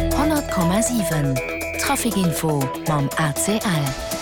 100,7 Traficinfo mam ACL.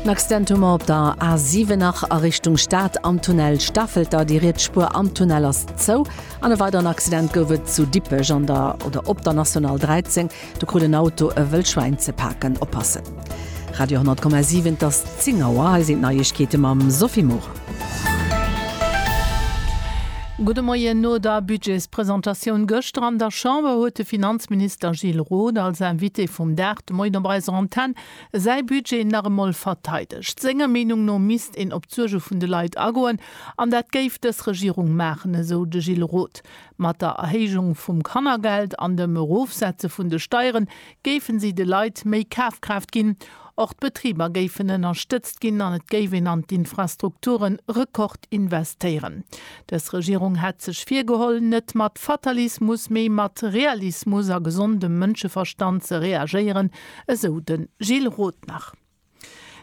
En Accidentement op der A7 nach a Richtung Stad am Tunnel Stafelter. Déi riets Spuer am Tunnel ass zou. An e weideren Accident gouf et zu Dippech an der oder op der National 13. Do krut en Auto e Wëllschwäin ze paken. Oppassen! Radio 10,7 Et ass 10 Auer, hei sinn d'Neiegkeete mam Sophie Maurer. Gudde Moien. No der Budgetspresentatioun gëschter an der Chamber huet de Finanzminister Gilles Roth als Invité vum Dag de Moien op eiser Antenn säi Budget nach emol verteidegt. Senger Meenung no misst een op d'Suerge vun de Leit agoen an dat géif dës Regierung maachen, esou de Gilles Roth. Mat der Erhéijung vum Kannergeld an dem Erofsetze vun de Steieren géifen si de Leit méi Kafkraaft ginn. Och d'Betriber géifen ënnerstëtzt ginn an et géif een an d'Infrastrukture Rekord investéieren. Dës Regierung hätt sech virgeholl, net mat Fatalismus, mee mat Realismus a gesondem Mënscheverstand ze reagéieren, esou de Gilles Roth nach.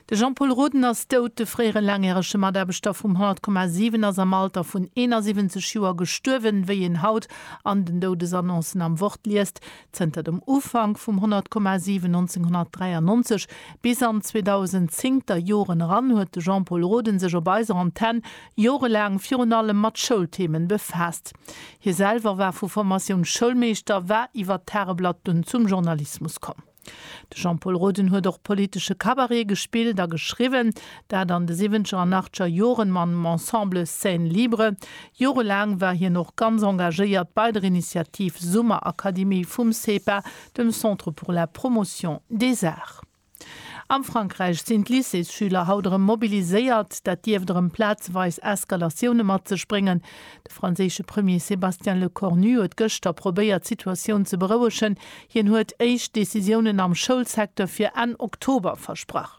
De Jean-Paul Roden ass dout. De fréiere laangjärege Mataarbechter vum 100,7 ass am Alter vun 71 Joer gestuerwen. Wéi een haut an den Doudesannoncen am Wort liest, Zënter dem Ufank vum 100,7 1993 bis an d'zweedausenzéngter Joren eran huet de Jean-Paul Roden sech op eiser Antenn jorelaang virun allem mat Schoulthemen befaasst. Hie selwer war vu Formatioun Schoulmeeschter, war iwwer d'Tageblatt dunn zum Journalismus komm. De Jean-Pol Roden huet och politesche Cabaret gespillt a geschriwwen, dat an de siwwenzeger an achteger Joren mam Ensemble Scène Libre. Jorelaang war hien och ganz engagéiert bei der Initiativ Summerakademie vum CEPA, dem Centre pour la Promotion des Arts. Am Frankräich sinn d'Lycéesschüler haut erëm mobiliséiert. Dat dierft erëm plazeweis Eskalatioune mat sech bréngen. De franséische Premier Sébastien Lecornu huet gëschter probéiert d'Situatioun ze berouegen, Hien huet éischt Decisiounen am Schoulsecteur fir Enn Oktober versprach.